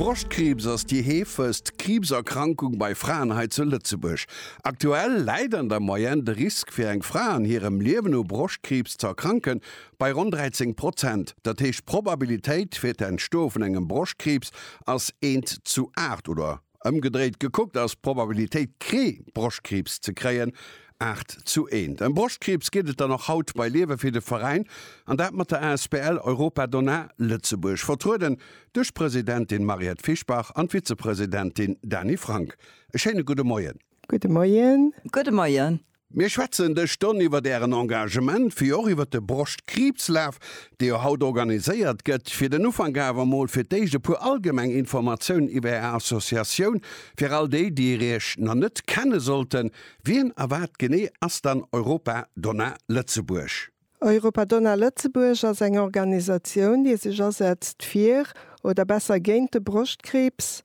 Broschtkriibs ass déi heefegst Kriibserkrankung bei Fraen hei zu Lëtzebuerg. Aktuell läit an der Moyenne de Risk fir eng Fra an hirem Liewen u Broschtkriibs ze erkranken bei ronn 13 Prozent. Dat heescht d'Probabilitéit fir d'Entstoe vun engem Broschtkriibs ass eent zu aacht oder. Ëmgedréit gekuckt ass d'Probabilitéit kree Broschtkriibs ze kréien 8 zu 1. Ëm Broschtkriibs geet et dann och haut bei Liewe fir de Veräin an dat mat der asbl Europa Donna Lëtzebuerg, vertrueden duerch d'Presidentin Mariette Fischbach an d'Vizepresidentin Dany Frank. E schéine gudde Moien. Gudde Moien. Gudde Moien. Mir schwätzen dës Stonn iwwert Ären Engagement, wéi och iwwert de Broschtkriibslaf, dee jo haut organiséiert gëtt. Fir den Ufank awer emol fir d'éischt e puer allgemeng Informatiounen iwwer Är Associatioun, fir all déi, déi Iech nach net kenne sollten, Wien a wat genee ass dann Europa Donna Lëtzebuerg? Europadonna Lëtzebuerg ass eng Organisatioun, déi sech asetzt fir, oder besser géint de Broschtkriibs,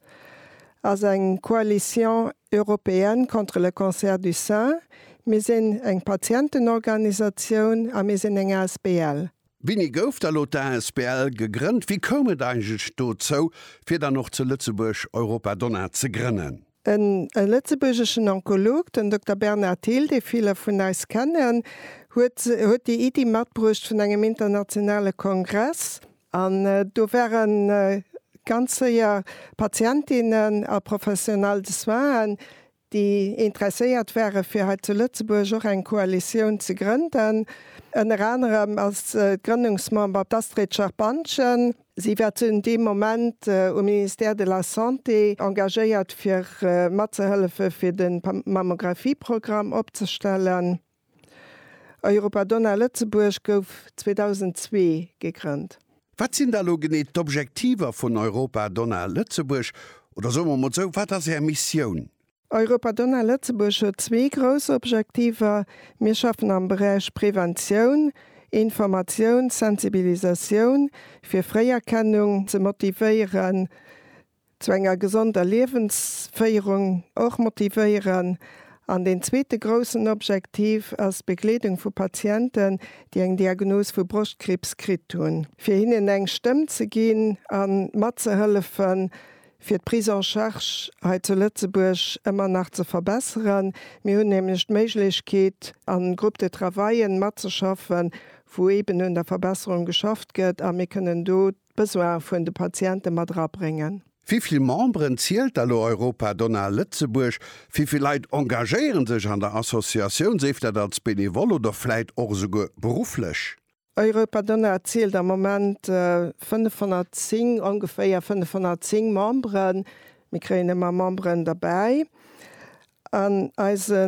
ass eng Coalition européenne contre le cancer du sein. Mir sinn eng Patientenorganisatioun a mir sinn eng Asbl. Wéini gouf da lo d'Asbl gegrënnt? Wéi koum et eigentlech dozou, fir dann och zu Lëtzebuerg Europadonna ze grënnen? En lëtzebuergeschen Onkolog, den Dokter Bernard Thill, dee ville vun eis kennen, huet huet déi Iddi matbruecht vun engem internationale Kongress. An do ware ganz séier Patientinnen a Professionelle de soinen, déi interesséiert ware fir hei zu Lëtzebuerg och eng Koalitioun ze grënden. Ënner anerem ass Grënnungsmember d'Astrid Scherpantgen. Si war zu deem Moment um Ministère de la Santé engagéiert fir matzehëllefe fir de Mammographie-Programm opzestellen. Europa Donna Lëtzebuerg gouf 2002 gegrënnt. Wat sinn da elo genee d'Objektiver vun Europa Donna Lëtzebuerg? Oder soe mer emol esou, wat ass Är Missioun? Europa Donna Lëtzebuerg huet zwee grouss Objektiver, Mir schaffen am Beräich Preventioun, Informatioun, Sensibilisatioun, fir Fréierkennung ze motivéieren, zu enger gesonder Liewensféierung och motivéieren. An deen zweete groussen Objektiv ass d'Begleedung vu Patienten, déi eng Diagnos vu Broschtkriibs kritt hunn, fir hinnen eng Stëmm ze ginn a matzehëllefen, fir d'Prise en charge hei zu Lëtzebuerg ëmmer nach ze verbesseren. Mir hunn nämlech d'Méiglechkeet, a Groupe de travaillen matzeschaffen, wou eeben un der Verbesserung geschafft gëtt, a mir kënnen do d'Besoine vun de Patiente mat erabréngen. Wéi vill Memberen zielt da lo Europa Donna Lëtzebuerg? Wéi vill Leit engagéiere sech an der Associatioun, séif dat als benevole oder vläit och esouguer berufflech? Europa Donau zielt am Moment 510, ongeféier 510 Memberen. Mir kréien ëmmer Memberen derbäi. An eise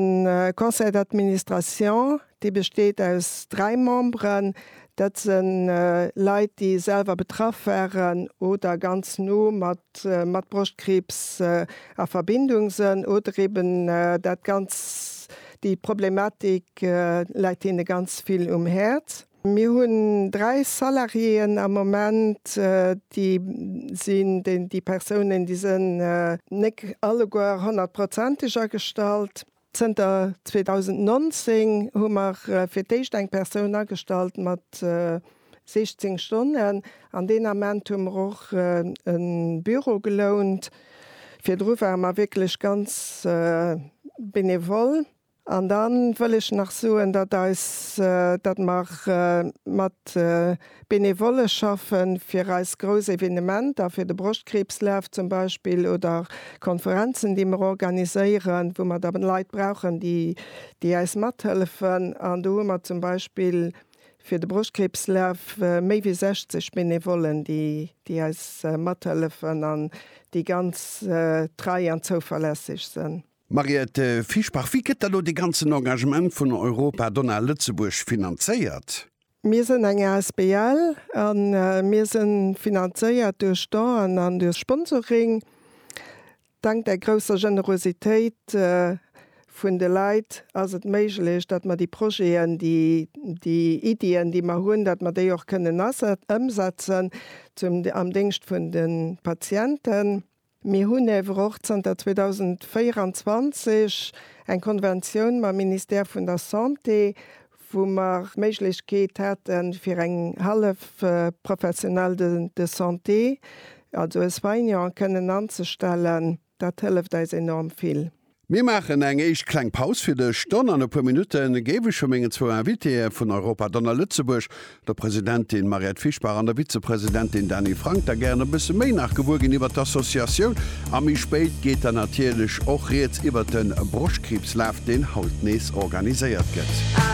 Conseil d'administration, dee besteet aus dräi Memberen, dat se Leit, déi selwer betraff waren oder ganz no mat mat Broschtkriibs a Verbindung sënn oder eeben dat ganz Déi Problematik läit hinne ganz vill um Häerz. Mir hunn dräi Salariéeën am Moment, déi sinn, déi Persounen, déi sinn nek alleguer honnertprozenteg agestallt. Zënter 2019 hu mer fir d'éischt eng Persoun agestallt mat. 16 Stonnen. An deen Ament hu mer och e Büro gelount. Virdru ware mer wierklech ganz benevol. An da wëll ech nach soen, datt eis, datt mer mat Benevolle schaffen, fir eis grouss Evenementer, fir de Broschtkriibslaf zum Beispill oder Konferenzen, déi mer organiséieren, wou mer da Leit brauchen, déi, déi eis mathëllefen. An do hu mer zum Beispill. Fir de Broschtkriebslaf méi wéi 60 Benevollen, déi déi eis mathëllefen an déi ganz trei an zouverlässeg sënn. Mariette Fischbach, Wéi gëtt da lo dee ganzen Engagement vun Europa Donna Lëtzebuerg finanzéiert? Mir sënn eng asbl a mir sënn finanzéiert duerch Donen an duerch Sponsoring. Dank der grousser Generositéit vun de Leit ass et méiglech, datt mer déi Projeten, déi, déi Iddien, déi mer hunn, datt mer déi och kënnen ëmsetzen zum, am Déngscht vun de Patienten. Mir hunn ewer och zanter 2024 eng Konventioun mam Ministère vun der Santé, wou mer d'Méiglechkeet hate fir eng hallef Professionelle de de Santé, also e Soignant, kënnen anzestellen, dat hëlleft eis enorm vill. Mir maachen eng éischt kleng Paus fir de Stonn an e puer Minutte géif ech vu mengen zwou Invitéeë vun Europa Donner Lëtzebuerg, der Presidentin Mariette Fischbach an der Vizepresidentin Dany Frank, da gären e bësse méi nach gewuer ginn iwwert d'Associatioun. A méi spéit geet dann natierlech och rieds iwwert de Broschtkriibslaf, deen haut nees organiséiert gëtt.